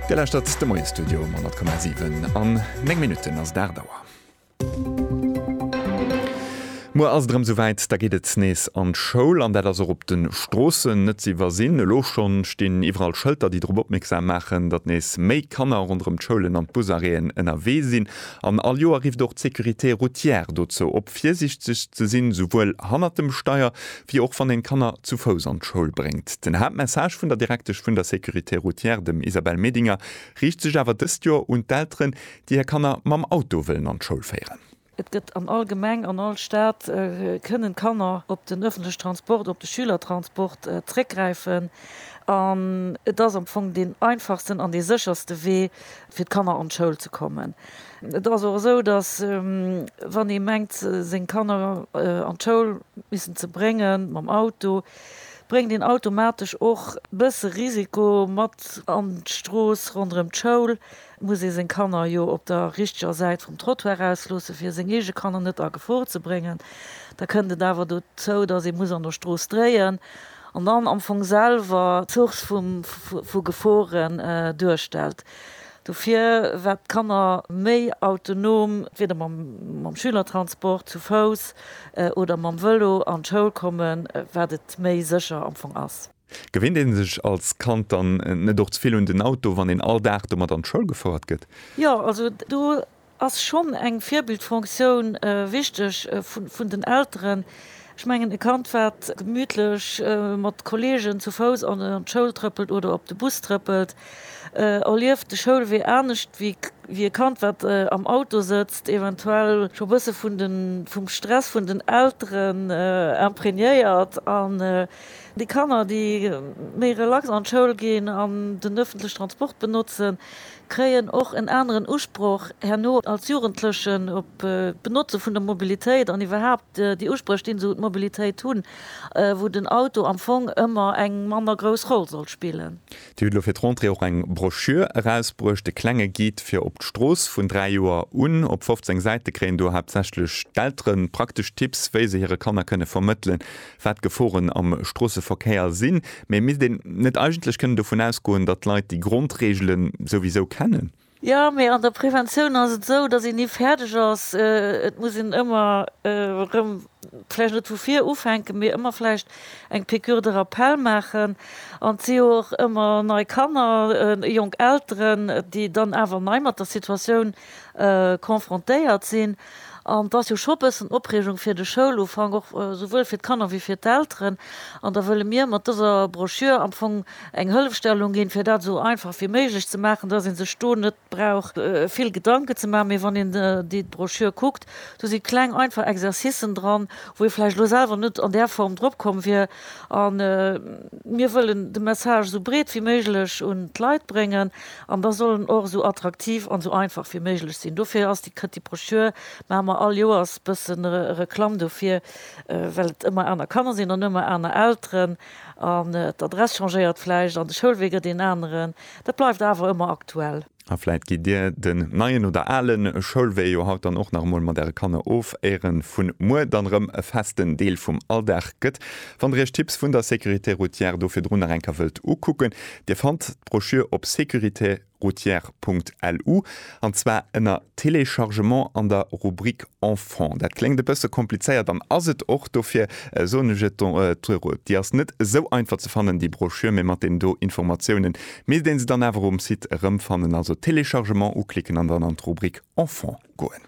Dir lauschtert de Moie-Studio um 100,7. An 9 Minutten ass et 8 Auer. Muer ass et erëm souwäit, da geet et nees an d'Schoul. An dat ass och op de Stroossen net ze iwwersinn. Elo scho stinn iwwerall Schëlter, déi drop opmierksam maachen, datt nees méi Kanner ronderëm d'Schoulen an d'Busarrêten ënnerwee sinn. An all Joer rifft och d'Sécurité routière dozou op, virsiichteg ze sinn, souwuel hannert dem Steier wéi och wann een d'Kanner zu Fouss an d'Schoul bréngt. Den Haaptmessage vun der Direktesch vun der Sécurité routière, dem Isabelle Medinger, riicht sech awer dëst Joer un d'Elteren, déi hir Kanner mam Auto wëllen an d'Schoul féieren. Et gëtt an all Gemeng, an all Stad kënnen d'Kanner op den ëffentlechen Transport, op de Schülertransport zréckgräifen an et ass am Fong deen einfachsten an dee sécherste Wee fir d'Kanner an d'Schoul ze kommen. Et ass och esou, datt wann ee mengt seng Kanner an d'Schoul missen ze bréngen mam Auto, bréngt een automatesch och bësse Risiko mat an d'Strooss ronderëm d'Schoul, muss ee seng Kanner jo op der richteger Säit vum Trottoir ausloosse fir seng eege Kanner net a Gefor ze bréngen. Da kënnt et awer dozou, datt ee muss an der Strooss dréien an dann am Fong selwer d'Source vu Gefore duerstellt. Dofir wat d'Kanner méi autonom, entweder mam Schülertransport, zu Fouss oder mam Vëlo an d'Schoul kommen, wat et méi sécher am Fong ass. Gewinnt een sech als Kand dann net och ze vill un den Auto, wann een all Dag domat an d'Schoul gefouert gëtt? Jo, also do ass schonn eng Virbildfonctioun wichteg vun den Elteren. Ech mengen, e Kand, wat gemütlech mat Kolleegen zu Fouss an d'Schoul trëppelt oder op de Bus trëppelt, erlieft de Schoulwee anescht wéi e Kand, wat am Auto sëtzt, eventuell scho bësse vum Stress vun den Elteren imprégnéiert. An déi Kanner, déi méi relax an d'Schoul ginn an den öffentliche Transport benotzen, kréien och en aneren Usproch herno als Jugendlechen op d'Benotze vun der Mobilitéit an iwwerhaapt déi Uspréch, déi se un d'Mobilitéit hunn, wou den Auto am Fong ëmmer eng manner grouss Roll soll spillen. Dir hutt elo fir d'Rentrée och eng Broschür erausbruecht, de klenge Guide fir op d'Strooss. Vun dräi Joer un, op 15 Säite kréien do haaptsächlech d'Eltere praktesch Tipps, wéi se hire Kanner kënne vermëttelen, wat d'Geforen am Stroosseverkéier sinn, mä misst een net eigentlech kënnen dovun ausgoen, datt d'Leit déi Grondreegele souwisou kennen? Jo, mä an der Preventioun ass et esou, datt een ni fäerdeg ass. Et muss een ëmmer erëm, vläicht net vu vir ufänken, mä ëmmer vläicht eng Piqûre de rappel maachen. An et si jo och ëmmer nei Kanner, jonk Elteren, déi dann awer nei mat der Situatioun confrontéiert sinn. An et ass jo scho e bëssen Opreegung fir de Schoulufank, och souwuel fir d'Kanner wéi fir d'Elteren. An da wëlle mir mat dëser Broschür am Fong eng Hëllefstellung ginn, fir dat esou einfach wéi méiglech ze maachen, dass ee sech do net brauch vill Gedanken ze maachen. Mee wann een déi Broschür kuckt, do si kleng einfach Exercicen dran, wou ee vläicht elo selwer net an där Form drop komm wier. A mir wëllen de Message esou breet wéi méiglech un d'Leit bréngen. An da soll en och esou attraktiv an esou einfach wéi méiglech sinn. Dofir ass déi kënnt déi Brochure, maache mer all Joers bëssen Reklamm dofir, well et ëmmer aner Kanner sinn an ëmmer aner Elteren an d'Adress changéiert vläicht an de Schoulwee gëtt een aneren. Dat bleift awer ëmmer aktuell. A vläicht gitt Dir den neien oder ale Schoulwee jo haut dann och nach emol mat Äre Kanner of, éiere vun muer dann erëm e festen Deel vum Alldag gëtt. Wann Der Iech d'Tipps vun der Sécurité routière do virdrun nach eng Kéier wëllt ukucken, Dir fannt. D'Broschür op securitéroutière.lu, an zwar ënner Téléchargement an der Rubrik Enfants. Dat kléngt e bësse komplizéiert an ass et och. Dofir soen ech et do, Déi ass net esou einfach ze fannen, déi Broschür, mee mat deenen do Informatiounen misst ee se dann awer um Site erëmfannen. Also Téléchargement uklicken an dann an d'Rubrik Enfants goen.